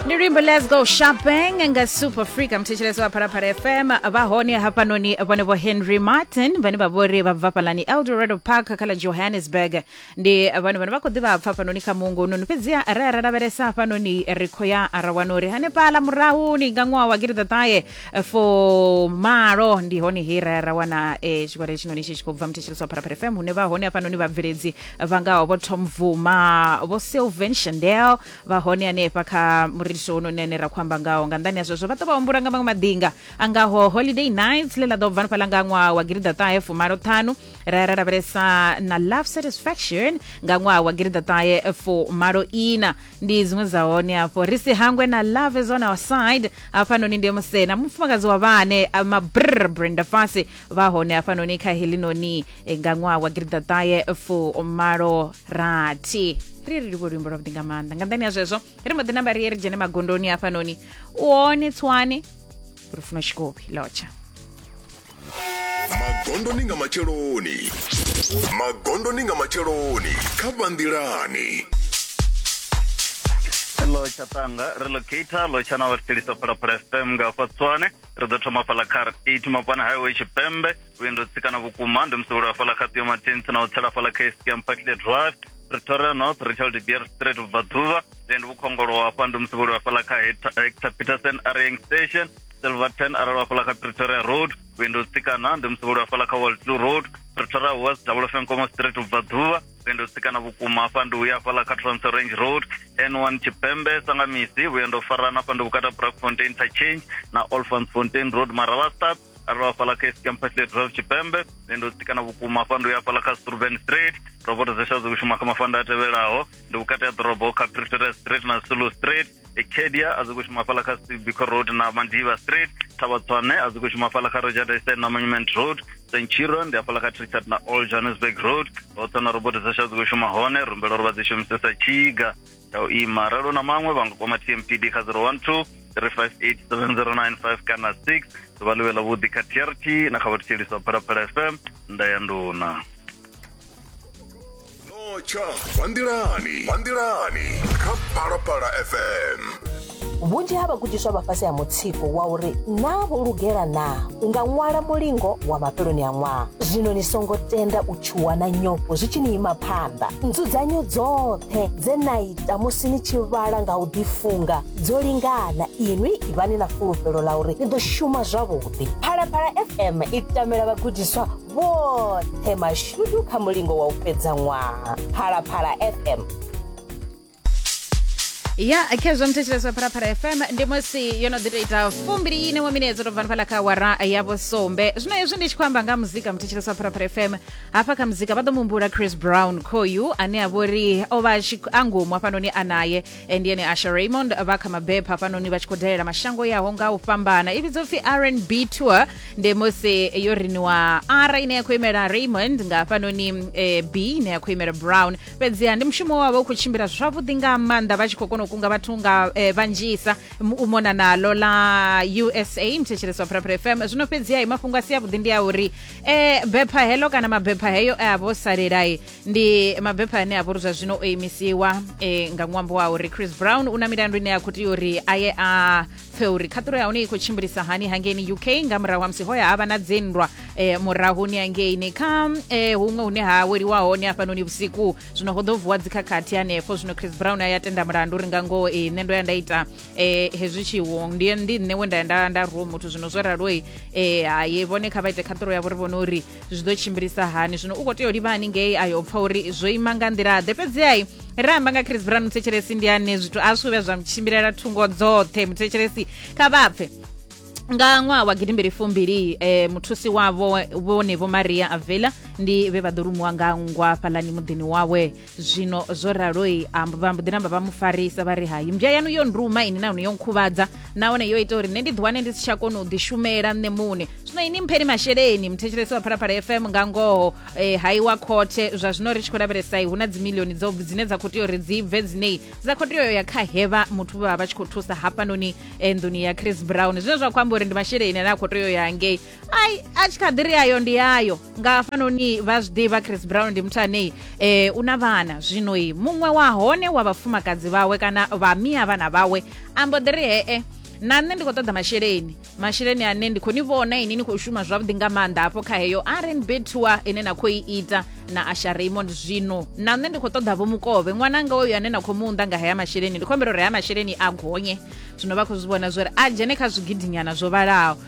ndi luimbo let's go shopping nga super freak mthetshelesi wa phalaphala fm vha hone hafhanoni vhone vho henry martin vhane vha vhori vha bva fhalani eldorado park kha ḽa johannesburg ndi vhone vhane vha khou ḓivha pfa hafhanoni kha mungo noni fhedziha ra ya ra lavhelesa hafhanoni ri khou ya ra wana uri hanefhala murahuni nga ṅwaha wa gidiḓaṱahe fo malo ndi hone he ra ya ra wana eh, tshigwada tshinoni tshi tshi khou bva mthetshelesi wa phalaphala fm hune vha hone hafhanoni vhabveledzi vha ngaho vho tom vuma vho sylvan chandel vha hone hanefha kha muriso wonune ne ra khou amba ngaho nga nḓani ya zwezwo vha ḓo vha humbula nga maṅwe maḓinga a ngaho holiday nights ḽe ḽa ḓo bva nifhala nga ṅwaha wa girida ṱahe fumalo ṱhanu ra ya ra lavhelesa na love satisfaction nga ṅwaha wa girida ṱahe fumalo ina ndi dziṅwe dza hone afho ri si hangwe na love is on our side hafhanoni ndi musena mufumakadzi wa vhane mabrr brenda fasi vha hone hafhanoni kha helinoni eh, nga ṅwaha wa giridaṱahe fumalo rathi ri ri livho luimbo lwavhuḓi nga maanḓa nga nṱani ya zwezwo ri mbo ḓi namba ri ye ri dzhene magondoni hafhanoni u hone tswane ri funa tshikopi lotsha magondoni nga matsheloni magondoni nga matsheloni kha vhanḓilani lotsha tanga relocator lotsha na vhathetshelisa phalaphala fm nga hafha tswane ri ḓo thoma fhaḽa kha r eight mapana highway tshipembe vhuendo tsikana vhukuma ndi musevhelo wa fhaḽa kha ṱio matins na u tsela fhaḽa kha estia mpakile drive pretoria north retail de beer street vhubvaḓuvha then vhukhongolo wa hafha ndi musevhelo wa fhaḽa kha hector peterson areing station silverton arali wa fhaḽa kha pretoria road vhuendo tsikana ndi musevhelo wa fhaḽa kha waltloo road pretoria west double fenkomo street vhubvaḓuvha vhuendo tsikana vhukuma hafha ndi uya hafhaḽa kha trans range road n one tshipembe sanga misi vhuendo farana hafha ndi vhukata brakfontein interchange na olfans fontein road maravastad arali hafhaḽa kha campasle drive tshipembe vhuendo tsikana vhukuma hafha ndi uya hafhaḽa kha struven street roboto dzesha dzi kushuma kha mafanda a tevhelaho ndi vhukati ha ḓorobo kha pretoria street na sulu street ekedia a zwi khou shuma fhala kha sibiko road na mandiva street thabatswane a zwi khou shuma fhala kha rejadese na monument road centurion ndi hafhaḽa kha trichard na all johannesburg road hoṱhe na robot dzasha dzi khou shuma hone rumbela uri vha dzi shumisesa tshiga ya u ima ralo na maṅwe vha nga kwama tmpd kha 012 3587095 kana 6 ḓuvha ḽiwe ḽa vhuḓi kha trt na kha vhathetshelisi wa phalaphala fm nda ya nduna notsha vhanḓilani vhanḓilani kha phalaphala fm vhunzhi ha vhagudiswa vha fhasi ha mutsiko wa uri naa vho lugela naa u nga ṅwala mulingo wa mafheloni a ṅwaha zwino ni songo tenda u tshuwa na nyofho zwi tshi ni ima phanḓa nzudzanyo dzoṱhe dze na ita musi ni tshi vhala nga u ḓifunga dzo lingana inwi ivhani na fulufhelo ḽa uri ni ḓo shuma zwavhuḓi phalaphala fm i tamela vhagudiswa vhoṱhe mashudu kha mulingo wa u fhedza ṅwaha phalaphala fm ya khezwo mthetsheleswa pharapara fm ndi musi yo no ḓi to ita fumbili ine wa mine dzo to bva fhala kha wara ya vhusumbe zwino hezwi ndi tshi khou amba nga muzika mthetsheleswa pharapara fm hafha kha muzika vha ḓo muhumbula chris brown khoyu ane a vha uri o vha a tshi- a ngomu hafhanoni a naye ndiye ni asha raymond vha kha mabepha hafhanoni vha tshi khou dalela mashango yaho nga u fhambana i vhidzwa upfi rnb tour ndi musi yo riniwa r ine ya khou imela raymond nga hafhanoni eh, b ine ya khou imela brown fhedziha ndi mushumo wavho u khou tshimbila zwavhuḓi nga maanḓa vha tshi khou kona u kunga vhathu nga eh, vhanzhisa M- u mona nalo la usa mthetsheleswa phuraphura fm zwino fhedziha i mafhungo a si avhuḓi ndi a uri eh, bepha heḽo kana mabepha heyo e a vho salelai ndi mabepha ane a vha uri zwa zwino o imisiwa e, nga ṅwambo wa uri chris brown u na milandu ine ya khou tea uri a ye a pfe uri khaṱulo ya hone i khou tshimbilisa hani hangeini uk nga murahu ha musi hoya ha vha na dzinndwa e, murahuni hangeini kha e, huṅwe hune ha weliwa hone hafhanoni vhusiku zwino ho ḓo vuwa dzikhakhathi hanefho zwino chris brown a ya tenda mulandu uri nga ngoho e, nṋe ndo ya nda ita e, hezwi tshiwo ndi ndi nṋe we nda ya nda, nda ruwa muthu zwino zwo raloi e, haye vhone kha vha ite khaṱulo yavho ri vhone uri zwi ḓo tshimbilisa hani zwino u khou tea u livha haningei ayo pfa uri zwo ima nga nḓila ḓe fhedzihai ri amba nga chris brown muthetshelesi ndi ane zwithu a zwi vhuya zwa tshimbilela thungo dzoṱhe muthetshelesi kha vhapfe nga ṅwaha wa gidimbili fumbili eh, muthusi wavho vhone vho maria avela ndi vhe vha ḓo rumuwa nga nngwa fhalani muḓini wawe zwino zwo raloi vha mbo ḓi namba vha mu farisa vha ri hai mmbya yanu yo nduma ini nahone yo nkhuvhadza nahone yo ita uri nṋe ndi ḓiwane ndi si tsha kona u ḓishumela nṋe muṋe zwino ini mpheni masheleni muthetshelesi wa phalaphala fm nga ngoho eh, hai wa khothe zwa zwino ri tshi khou lavhelesai hu na dzimilioni dzo dzine dza khou tea uri dzi bve dzinei dza khou tea ya kha hevha muthu vha vha tshi khou thusa hafhanoni eh, nḓuni ya chris brown zwine zwa khou amba uri ndi masheleni ane a khou tea ya ngei ai a tshi kha ḓi ri yayo ndi yayo nga hafhanoni vha zwi ḓivha chris brown ndi muthu anei eh, u na vhana zwinoi muṅwe wa hone wa vhafumakadzi vhawe kana vha mia vhana vhawe ambo ḓi ri hee na nṋe ndi khou ṱoḓa masheleni masheleni ane ndi khou ni vhona ini ni khou shuma zwavhuḓi nga maanḓa hafho kha heyo rnb tour ine na khou i ita na asha raymond zwino na nṋe ndi khou ṱoḓa vho mukovhe ṅwananga oyo ane na khou mu unḓa nga haya masheleni ndi khou humbela uri haya masheleni a gonye zwino vha khou zwi vhona zwori a dzhene kha zwigidinyana zwo vhalaho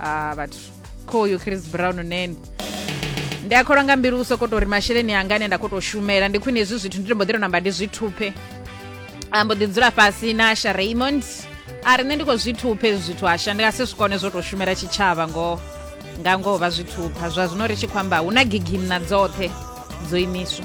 a vhathu khoyu chris brown nene ndi a kholwa nga mbilu u sokou tori masheleni anga ane nda khou tou shumela ndi khwine hezwi zwithu ndi to mbo ḓi to namba ndi zwi thuphe a mbo ḓi dzula fhasi na sha raymond a ri nṋe ndi khou zwi thuphe hezwi zwithu asha ndi nga si zwi kone zwo tou shumela tshitshavha ngoho nga ngoho vha zwi thupha zwa zwino ri tshi khou amba hu na gigimna dzoṱhe dzo imiswa